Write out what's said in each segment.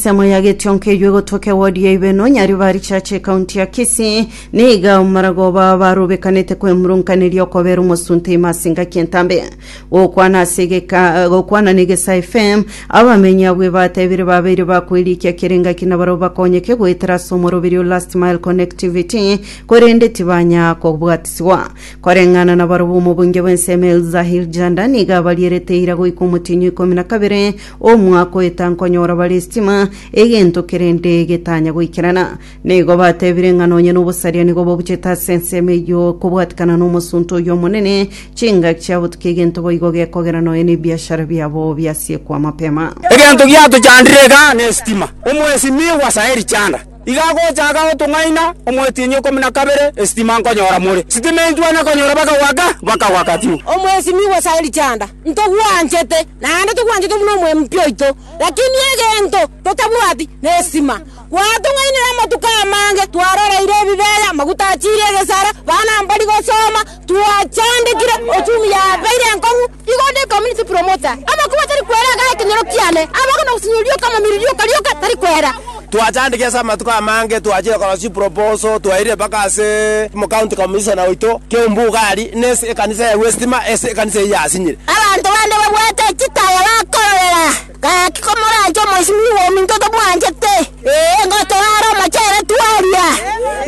Ensemo ya Getionka eywo egotoka ewodi ya Ibeno, Nyaribari Church, ekaunti ya Kisii, niga omoragooba barubekanete kwemurunkaneria okobera omosunte ime ase engaki entambe. Gokwana ase egeka- gokwana na Egesaa FM, abamenyi abwo ebatebire babeire bakoirikia kera engaki na barabwo bakonyeke goetera ase omoroberi o Last Mile Connectivity, korende tibanya kobwatiswa. Koreng'ana na barabwo omobunge bw'ensemo Elzahir Janda niga abarierete eira goika omotienyi o ikomi na kabere Omwakoeta nkonyora bare estima, egento kerende getanya goikerana. Nigo batebire ng'a nonye nobosaria nigo bobuchete ase ensemo eyio kobwatikana nomosunte oyio omonene, chingaki chia botukia egento boigo gekogera nonya nebiashara biabo biasiekwa mapema. Egento giatochandire iga nestima. Omwesimigwa Saeli Chanda. Iga agocha agagotung'aina omwetienyi okomi na kabere, esitima nkonyora more. Sitima enchwa nakonyora bakagwaka, bakagwaka tiu. Omwesimigwa Sauli Chanda, ntogwanchete, naende togwanchete buna omwempi oito, lakini egento totabwati nestima. Gwatung'ainire amatuko amange, twaroreire ebibeya, amaguta achiire egesara, bana mbari gosoma, twachandekire, ochumi yabeire enkong'u, Igo onde community promoter, amakubo atari kwera agae ekenyoro kiane, abagwe na gosinyorwa rioka amamiri rioka rioka tari kwera. Twachandeke ase amatuko amange, twachire korosia chiproposal, twairire mpaka ase County Commissioner oito, Keumbu Ugali, nase ekanisa ya Westima, ase ekanisa eyio yasinyire. Abanto bande babwate chitaya bakororera. Gaki komoranche omoisimi bw'ominto tomwanchete, ee, ngotoare omochere twaria,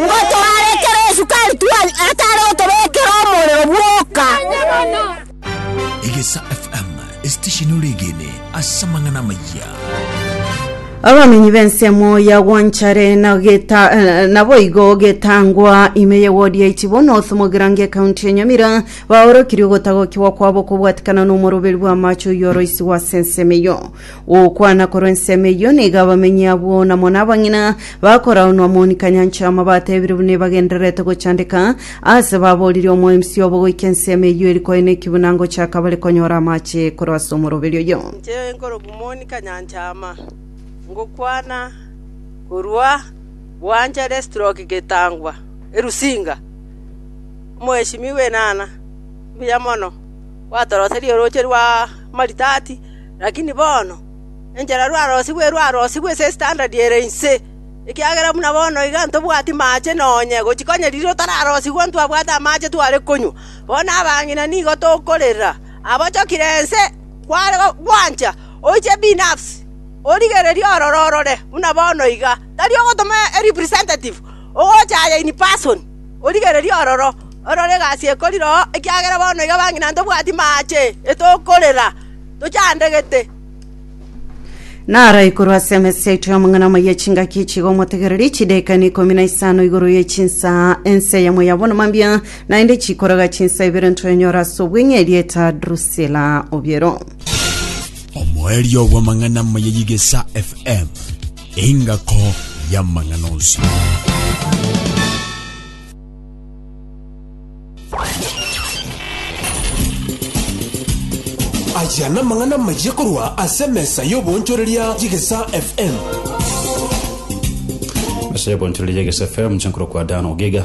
ngotoare ekero esukari twaria, atari gotobekera omorero bwoka. Egesa FM, esitesheni ore egene ase amang'ana amayia. Abamenyi b'ensemo ya Gwanchare na geta, eh, naboigo getangwa ime ye wodi ya Ichibono Othomogera nge county ya Nyamira Baorokirie ogotagokigwa kwabo kobwatikana nomoroberi bw'amache oyio oroisigwe ase ensemo eyio. Gokwana korwa ensemo eyio nigo abamenyi abwo na mono abang'ina bakoraunwa moni kanyancha ama batebire buna ebagendererete gochandeka aase baboririe omoemsi obo goika ensemo eyio eri koeneki buna ngochaka bare konyora amache korwa ase omoroberi oyio. Inche nkoroku moni kanyancha ama, ngokwana korwa bwanchare stroke getangwa erusinga. Omoesimigwa enana, mbuya mono, gwatoroserie orooche rw'amaritati, lakini bono enchera rwarosigwe rwarosigwe ase estandadi ere inse, ekiagera buna bono iga ntobwati maache nonya gochia konya riria otararosigwa ntwabwate amache tware konywa. Bono abang'ina nigo tokorera, abochokire ense, kware gwancha oiche ebinabsi, origererie ororo orore buna bono iga, tari ogotoma erepresentative, ogocha aye in person. Origererie ororo, orore egasi ekori roo, ekiagera bono iga bang'ina ntobwati maache, etokorera, tochandegete.” Naraikorwe ase emesa yaito y'amang'ana amaya chingaki echiga omotegereri chidekani ikomi na isano igoro ye chinsaa ense yamo ya bono mambia naende chikoraga chinsaa ibere ntoenyora ase obweng'e erieta Drusila obiero. omoerio bw'amang'ana amaya y'igesa fm Engako y'amang'ana onsi. Aya namang'ana amayia korwa ase emesa y'oboonchoreria y'egesa FM. Ase ebonchorori y'egesa FM, nche nkorokwa Dan Ogiga.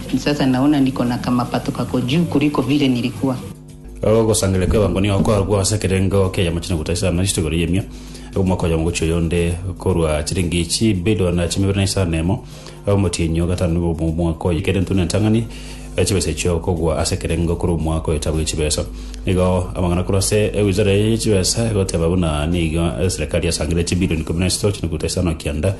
Nsase na una ndiko na kamapato kako juu kuria ikobire ni rikwa. Ogosangereria kw'ebango nigo korokwo ase ekerengo ki'eyamachina gotacha isano na isatu igoro y'emia, omwaka oyomo gochia oyonde, korwa chiringi chibilioni chimibere na isano na emo omotienyi o gatano bwa omwaka oye, kere ntwe n'entang'ani chibesa echio kogwa ase ekerengo korwa omwaka oyo etabu ye chibesa. Nigo amang'ana korwa ase ewizara eye ye chibesa egoteba buna nigo eserekari yasangereire chibilioni ikomi na isato chinukuta isano kianda,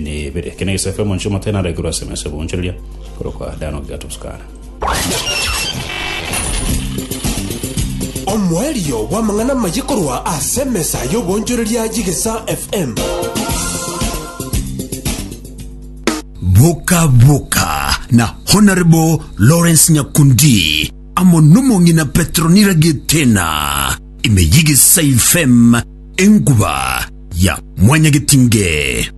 ne ibere. Ekio negesaku kia omonche omoteene araikerwe ase emesa y'oboonchoreria, korokwa Dan Ogiatoskana. Omoerio bw'amang'ana amaye korwa ase emesa y'oboonchoreria y'Egesaa FM. Boka Boka na Honourable Lawrence Nyakundi amo nomong'ina Petronira Gitena ime y'Egesaa FM enkuba ya Mwanyagetinge.